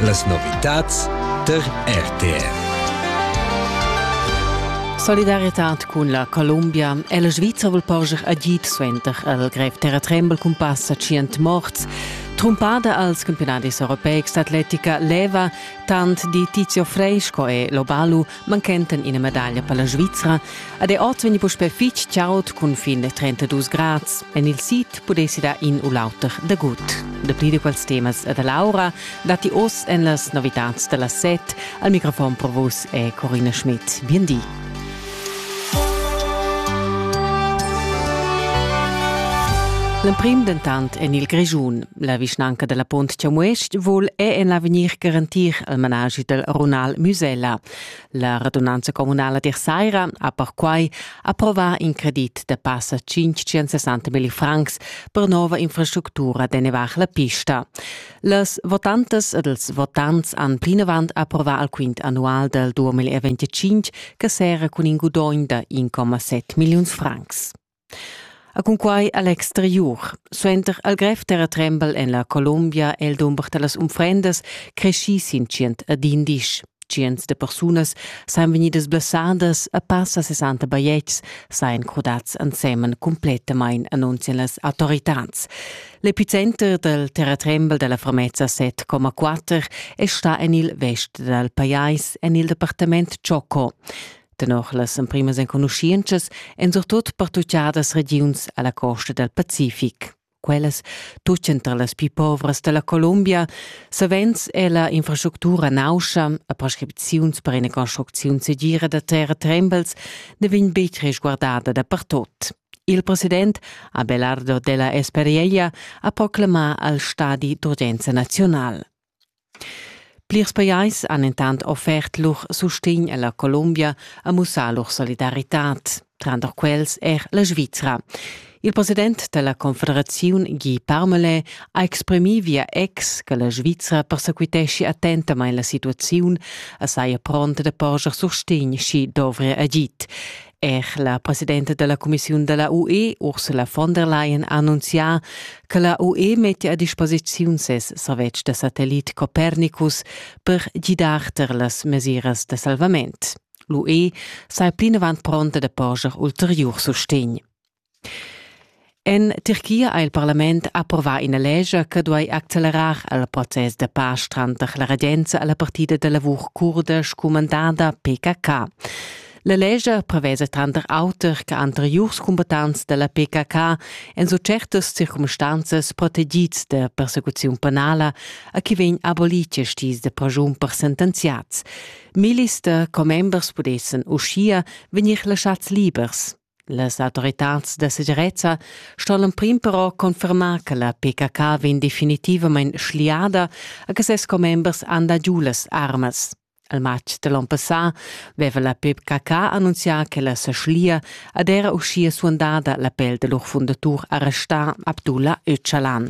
Las novitads tar RTR. Solidaritad cun la Columbia è la Svizra vul porscher agid suenter al grev terra trembel cun passa tschient morts. Trumpada als campionadis europeics d'atletica leva tant di Tizio Frei sco è Lobalu manchenten ina medaglia per la Svizra ed è oz vegni puspè fitg chaud cun fin da 32 grads. En il sid pudessi dar in u l'auter dagut. Dapli di quels temas da Laura datti oz en las novitads da la set. Al microfon pro vos è Corina Schmidt. Bien di. L'emprim dentant en il Grischun. La vischnanca della Pont Chamues-ch vul è en l'avegnir garantir il managi del runal Musella. La radunanza comunala dir Saira ha perquai approva in credit da passa 560 mil francs per nova infrastructura de nevar la pista. Les votantes ed els votants han plinavant approva al quint annual del 2025 che sera cun in gudogn da 1,7 milliuns francs. Ha cunquai a l'exteriur. Suenter al grev terratrembel en la Colombia è il dumber da las unfrendas creschì sin tschient ad indisch. Tschients de persunas sajan vegnidas blessadas a passa 60 bajetgs, sajan crudads ensemen cumplettamain, annunzian las autoritads. L'epicenter dal terratrembel da la Fermezza 7,4 è stà en il vest dal pajais, en il departament Choco. Tenor las emprimas enconuschientschas èn surtut pertutgadas regiuns a la costa dal Pacific. Quellas tutgan tar las pli povras da la Columbia. Savens è la infrastructura nauscha e prescripziuns per ina construcziun segira da terratrembels ne vegn betg resguardada dapertut. Il president Abelardo della Esperella ha proclamà al stadi d'urgenza nazional. Plirs pajais han entant offert lur sustegn a la Colombia a mussar lur solidaritad, tranter quels er la Svizra. Il president da la Confederaziun Guy Parmelin ha exprimì via ex che la Svizra persequiteschi attentamain la situaziun e saja pronta da porscher sustegn, sch'i dovria agid. Er la presidenta della Commissiun della UE, Ursula von der Leyen, ha annunzià che la UE mettia a disposiziun ses servetsch da satellit Copernicus per gidar tar las mesiras da salvament. L'UE sei plinavant pronta da porscher ulteriur sustegn. En Tirchia ha il parlament approvà ina lescha che duai accelerar il process da pasch tranter la regenza e la partida da lavur curda scumandada PKK. La lescha prevesa tranter auter che anteriurs combattants da la PKK en so certas circumstanzas protegids da persecuziun penala a chi vegn abolì quest dis da pragiun per sentenziats. Millis da commembers pudessan uschia vegnir laschads libers. Las autoritads da segirezza sto l'emprim però confermar che la PKK vegn definitivamain schliada e che ses commembers han dà giu las armas. Al matg da l'onn passà veva la PKK annunzià che la sa schlia ed era uschia suandada la pel da lur fundatur arrestà Abdullah Öcalan.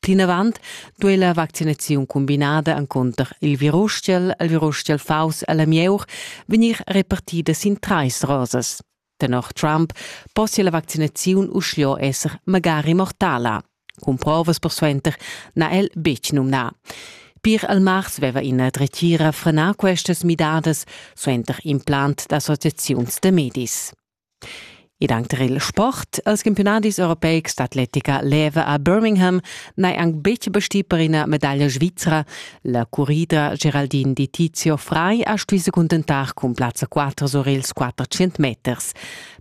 Plinavant duei la vaccinaziun cumbinada encunter il virustiel, il virustiel faus e la mieur vegnir repartida sin trais rosas. Tenor Trump possia la vaccinaziun uschia esser magari mortala. Cun provas persuenter n'ha el betg numnà. Pir al mars veva ina dretgira frenà questas midadas suenter implant d'associaziuns da medis. Ed anc tar il sport. Els campiunadis europeics d'atletica leva a Birmingham n'è anc betg bestì per ina medaglia svizra. La currida Geraldine Di Tizio Frei ha stuì se cuntentar cun plazza 4 sur ils 400 meters.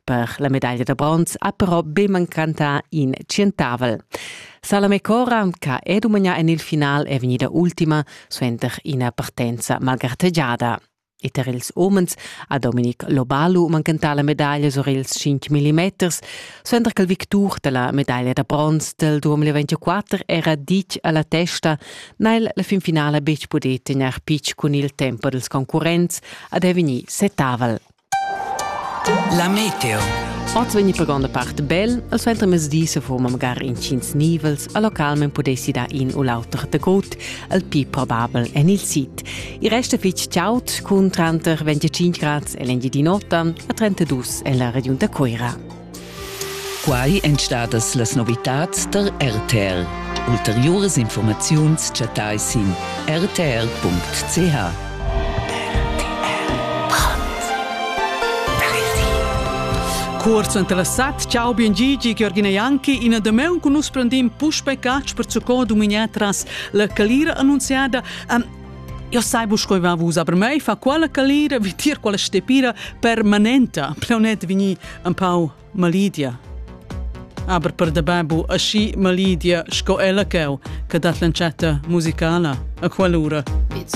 Per la medaglia da bronz ha però be mancantà in centavel. Salame Cora, che è dumagnà en il final, è vegnida ultima suenter ina partenza malgartegiada. E tar ils umens ha Dominic Lobalu manchentà la medaglia sur ils 5 millimeters, suenter ch'il victur da la medaglia da bronz del 2024 era ditg a la testa, n'ha el la finfinala betg pudì tegnair pitg cun il tempo dels concurrents ad è vegnì setavel. La meteo. Oz vegni per gronda part bel, al suenter mezzdi se foma magari incins nivels, a localmen pudessi da in u l'auter de gut, al più probabel en il sit. Il resta fitg chaud cun tranter 25 grad e l'engi di notan a 32 en la regiun da Coira. Quai èn stadas las novitads tar RTL. Ulteriuras informaziuns chattai sin rtl.ch. Cuort suenter la sat, ciao bien Gigi, Georgina Janki, ina damaun cun nus prendem puspe catch per zucò duminia tras la calira annunziada. Um, Eu sai bu sco va vus aber mei fa quella calira vi tier quella stepira permanenta plaunet vini un pau malidia aber per de babu aschi malidia sco ella cheu che dat l'encetta musicala a quell'ura Pizza.